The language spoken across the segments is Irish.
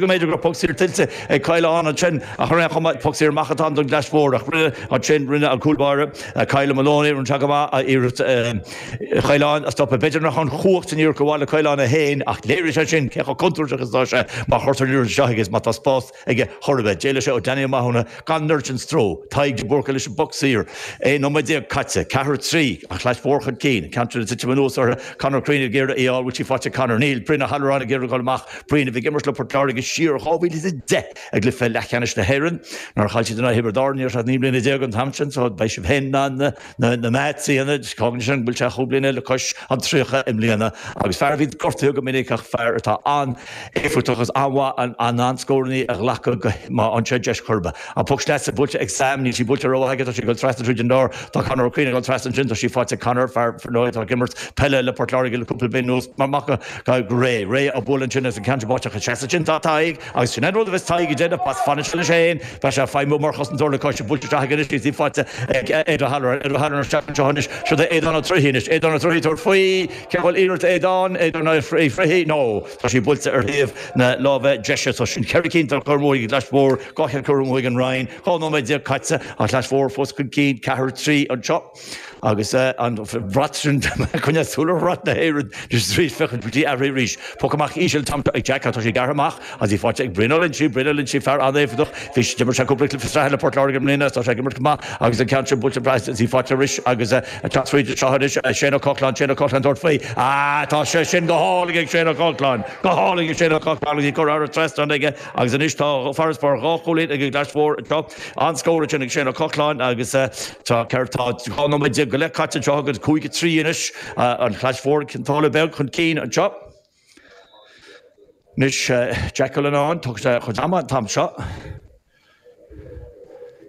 go mb'fhéidir go raibh poc saor tuillte ag Kyle ann ansin, ach ar aon chuma, poc saor amach atá ann don Chlais Mhór, ach roimhe ansin, rinne an cúl báire, Kyle Moloney, an jab go maith, a iarracht Chaoláin a stopadh. B'fhéidir nach raibh an chumhacht sin díreach i bhfad le Caolán é féin, ach léirigh sé sin cé chomh contúirteach is atá sé má chuirtear an liathróid seo chuige is má tá spás aige chor ar bith. D'éalaigh sé ó Danny Ó Mathúna gan mórán stró, Tadhg De Búrca leis an bpoc saor, 11 nóiméad caite, ceathair a trí, an Chlais Mhór chun cinn, Cantwell ag titim anuas orthu, Conor Crean ag iarraidh í a fháil, bhfuil sí faighte ag Conor? Níl, Brian Ó hAlluráin ag iarraidh a dhul amach, Brian a bhí ag imirt le Port Láirge siar ó 2010 i gcluiche leathcheannais na hÉireann. Nár chaill siad in aghaidh Thiobraid Árann ní raibh sé ach naoi mbliana déag an t-am sin so beidh sibh féin an mata a dhéanamh anois. Ciallaíonn sé sin go bhfuil sé chúig bliana le cois an tríocha i mbliana agus fear a bhí gortaithe go minic ach fear atá an-éifeachtach agus an-mhaith in ann scórannaí a ghlacadh go má fhanann sé deis choirbe. An poc sleasa buailte ag Sam, níl sí buailte rómhaith aige, tá sí ag dul trasna tríd an lár. Tá Conor Ó Cuinn ag dul trasna ansin, tá sí faighte ag Conor, fear ar ndóigh atá ag imirt peile le Port Láirge le cúpla bliain anuas mar mac Tadhg, Ré, ré a' bhuail ansin as an ceann sin buailte isteach a' Seán ansin, tá Tadhg, agus sin é an rud a bheas Tadhg a' déanamh, mar fanann sé leis fhéin, tá sé a' feidhmiú mar chosantóir le cois, a' buailte isteach aige anois agus í faighte ag Aodh O'Halloran, Aodh O'Halloran isteach anseo anois, siúd é Aodhán Ó Troighthe anois, Aodhán Ó Troighthe tabhairt faoi, an bhfuil iarracht ag Aodhán, Aodhán Ó Troighthe, no, tá sí buailte ar thaobh na láimhe deise so sin ceithre cinn atá curtha amú ag an gClais mhór, dhá cheann curtha amú ag an Rinn, dhá nóiméad déag caite, an Chlais Mhór fós chun cinn, ceathair a trí anseo. Agus an brat sin coinnithe sular bhraith na haoirí na trí fichid go dtí aithrí arís. Poc amach íseal atá ag Jack, tá sé gearrtha amach agus í faighte ag Brian Ó Loinsigh, Brian Ó Loinsigh, fear an-éifeachtach, bhí sé, d'imir sé cúpla cluiche sraithe le Port Láirge i mbliana, tá sé ag imirt go maith agus an ceann sin buailte ag Brian agus í faighte arís agus ag teacht fríd anseo anois. Shane Ó Cochláin, Shane Ó Cochláin tabhairt faoi, ah tá sé sin go hálainn ag Shane Ó Cochláin, go hálainn ag Shane Ó Cochláin agus í curtha trasna aige agus anois tá farasbarr dhá chúilín ag an gClais Mhór anseo. An-scór ansin ag Shane Ó Cochláin agus. Tá ceithre, tá dhá nóiméad déag go leith caite anseo agus cúig a trí anois an Chlais Mhór, Cionn tSáile Beag chun cinn anseo. Anois Jack Cullinane, tógann sé a chuid ama an t-am seo.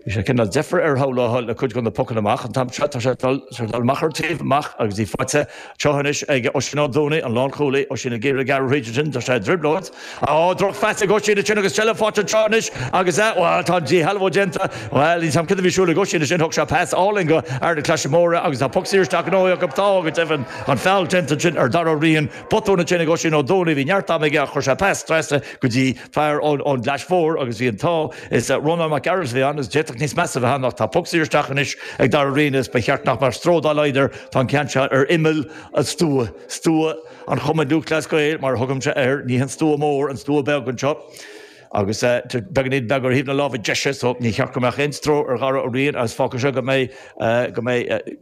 Bhí cineál deifir air shamhlófá le cuid de na pocanna amach an t-am seo, tá sé ag dul amach ar an taobh amach agus í faighte anseo anois ag Oisín Ó Dúnaí, an lánchúlaí, Oisín ag iarraidh gearradh thríd ansin, tá sé i dtrioblóid. Á, drochphas ag Oisín ansin agus seilbh faighte anseo anois agus eh, bhuel, tá díshealbhú déanta, bhuel, níl a fhios cad a bhí ar siúl ag Oisín ansin, thug sé pas álainn go fear na Claise Móire agus tá poc saor isteach gnóthaithe acu, tá, go deimhin, an feall déanta ansin ar Dharragh Ó Riain, botún ansin ag Oisín Ó Dúnaí, bhí neart ama aige ach chuir sé pas trasna go dtí fear ón gClais Mhór agus bhí an t-ádh leis, Rónán Mac Gearailt a bhí ann, is d'fhéadfadh níos measa a bheith ann ach tá poc saor isteach anois ag Dara Ryan is ba cheart nach mbeadh stró dá laghad air, tá an ceann seo ar imeall an stua, stua an Chumann Lúthchleas Gael mar a thugaimse air, ní hé an stua mór, an stua beag anseo agus beagáinín beag ar thaobh na láimhe deise so níor cheart go mbeadh aon stró ar Dhara Ó Riain agus fágfaidh seo go mbeidh, go mbeidh.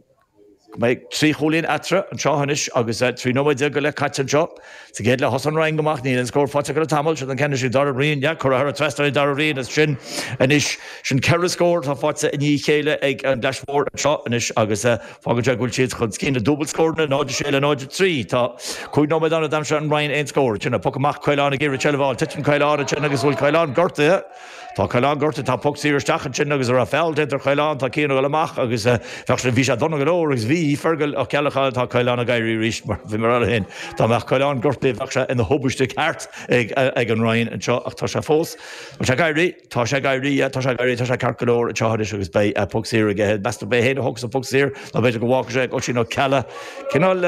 Beidh trí chúilín eatarthu anseo anois agus trí nóiméad déag go leith caite anseo. Sa gcéad leath thosaigh an Rinn go maith, níl aon scór faighte acu le tamall. Siad an ceann is ea Dara Rinn, leath curtha thar an trasnán ag Dara Rinn ansin anois. Sin ceithre scór atá faighte i ndiaidh a chéile ag an gClais Mhór anseo anois agus fágann sé go bhfuil siad chun cinn le dúbailt scóranna, 0, 6 le 0, 3. Tá cúig nóiméad ann ó d'aimsigh an Rinn aon scór. Titeann an puc amach, Caolán ag iarraidh seilbh a fháil, titeann Caolán ansin agus an bhfuil Caolán gortaithe. Tá Caolán gortaithe, tá poc saor isteach ansin agus a raibh feall déanta ar Chaolán, tá Cian a dhul amach agus bheadh sé, bhí sé dona go leor agus bhí, Fergal Ó Ceallacháin, tá Caolán ag éirí aríst mar bhí mé orthu fhéin, dá mbeadh Caolán gortaithe bheadh sé ina thubaiste ceart ag an Rinn anseo ach tá sé fós, tá sé ag éirí, tá sé ag éirí, tá sé ag éirí, tá sé ceart go leor anseo anois agus beidh poc saor aige, meas tú, ab é fhéin a thógfas an poc saor nó b'fhéidir go bhfágfadh sé ag Oisín Ó Ceallaigh, cineál.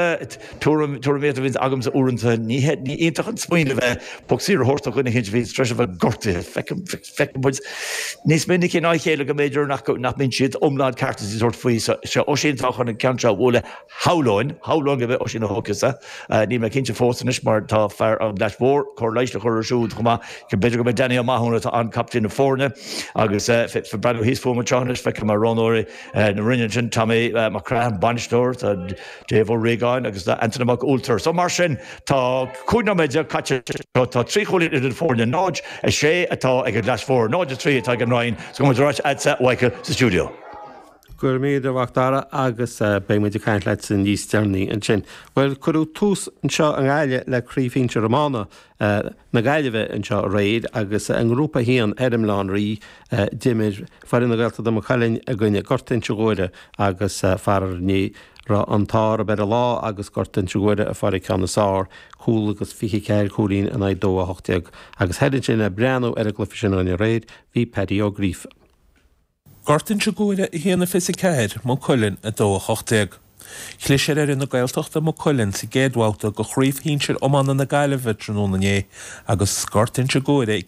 Tuairim, tuairim í a bhíonns agamsa uaireanta. Ní hé, ní iontach an smaoineamh é poc saor a thabhairt do dhuine éicint a bhíonns tar éis a bheith gortaithe. Feicim, feicim muid níos minice ná a chéile go mb'fhéidir nach go, nach mbíonn siad iomlán ceart is a sórt faoi. So, seo Oisín atá chun an ceann seo a bhualadh, shamhlóinn, shamhlóinn go b'é Oisín a thógfas é. Níl mé cinnte fós anois mar tá fear ón gClais Mhór, cóir leighis, á chur air siúd chomh maith. B'fhéidir go b'é Danny Ó Mathúna atá ann, captaen na foirne. Agus eh, ag breathnú thíos fúm anseo anois, feicim a roghnóirí. na Rinne ansin, Tommy Mac Craith an bainisteoir, tá Dave Ó Riagáin agus Antaine Mac Ualtear. So mar sin, tá 15 nóiméad caite, tá trí chúilín idir na foirne, 0-6 atá ag an gClais Mhór, 0-3 atá ag an Rinn, so go mbeidh muid ar ais a'dsa Mhichael sa stiúideo. Go raibh míle, a Mhacdara, agus beidh muid ag caint leatsa níos deireanaí ansin. Bhuel, cuireadh tús anseo i nGaillimh le Craobh Shinsir Iomána na Gaillimhe anseo aréir agus i nGrúpa 1, thoir i mBaile Átha an Rí, d'imir Foireann na Gaeltachta de Maigh Cuilinn i gcoinne Gort Inse Ghuaire agus faraor ní raibh an t-ádh ar an lá agus Gort Inse Ghuaire a fuair an ceann is fearr, cúl agus 24 cúilín in aghaidh 2 18 agus thoir ansin ag breathnú ar an gcluiche sin dúinn aréir, bhí Paddy Ó Gríofa. Gort Inse Guaire 1 24, Maigh Cuilinn 2 18. Chlis ar fhoireann na Gaeltachta, Maigh Cuilinn sa gcéad bhabhta de chraobh shinsir iomána na Gaillimhe tráthnóna inné agus Gort Inse Guaire ag